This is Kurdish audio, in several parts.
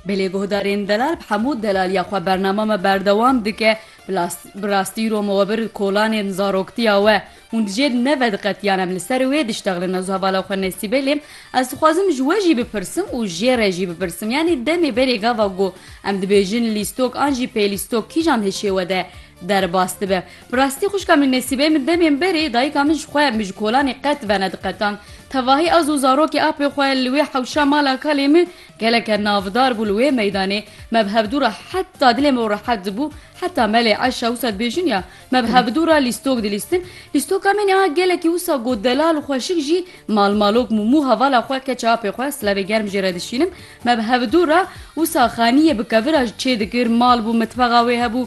Belê guhdarên delal bi hemû delaliya xwe bernama me berdewam dike, bi rastî rome we bir kolanên zaroktiya we. Hûn dijê neve diqetiyan em li ser wê diştexlin ez hevala xwe Nesîbe lê ez dixwazim ji we jî bipirsim û jê re jî bipirsim yanî demê berê gava got em dibêjin lîstok an jî pêlîstok kîjan hişê we de Derbas dibe. Bi rastî xwişka min Nesîbeyê min demên berê dayika min ji xwe min ji kolanê qet venediqetand. Tevahî ez û zarokê apê xwe li wê hewşa mala kalê min geleke navdar bû li wê meydanê. Me bi hevdû re heta dilê min rehet dibû heta melê Eşa wisa dibêjin ya me bi hevdû re lîstok dilîstin. Lîstoka min a gelekî wisa got delal û xweşik jî malmalok mû. Mû hevala xwe keça apê xwe slevê germ jê re dişînim. Me bi hevdû re wisa xaniyê bi kevira ji çê dikir, mal bû, mitbexa wê hebû.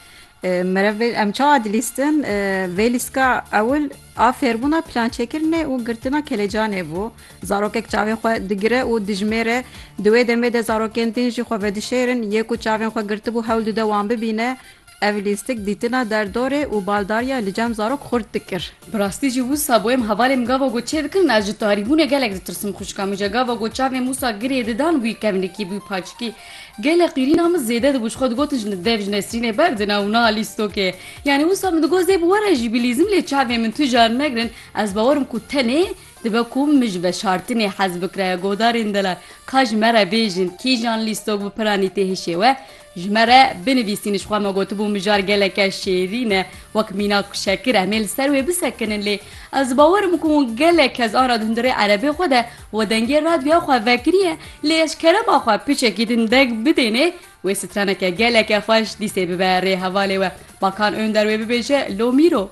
Merevê em çawa dilîstin? Vê lîstka ewil a fêrbûna plançêkirinê û girtina kelecanê bû. Zarokek çavên xwe digire û dijmêre. Di wê demê de zarokên din jî xwe vedişêrin. Yê ku çavên xwe girtibû hewl dide wan bibîne. Ev lîstik dîtina derdorê û baldariya li cem zarok xurt dikir. Bi rastî jî wisa boyem hevalêm gava ku çêdikirin ez ji tarîbûnê gelek ditirsim. Xwişka min jî gava ku çavên wisa girê didan bûyî kevnikî bûyî paçikî. Gelek qîrîna min zêde dibû ji xwe digotin ji dev ji Nesrînê berdina û na alî stokê. Yanî wisa min digot zêb were jî bîlîzim lê çavên min tu jar negirin ez bawer im ku tenê dibe ku min ji veşartinê hez bikire godarên delal ka ji me re bêjin kîjan lî stok bi piranî tê hişê we ji me re binivîsîn ji xwe me gotibû mijar geleke şêrîn e wek mînak û şekir em ê li ser wê bisekinin lê ez bawer im ku gelek kes an re di hundirê erebê xwe de We dengê radyoya xwe vekiriye lê ez kerema xwe piçekî din deng bidênê wê straneke geleke xweş dîsê bibe rê hevalê we. Bakan Önder wê bibêje Lomîro.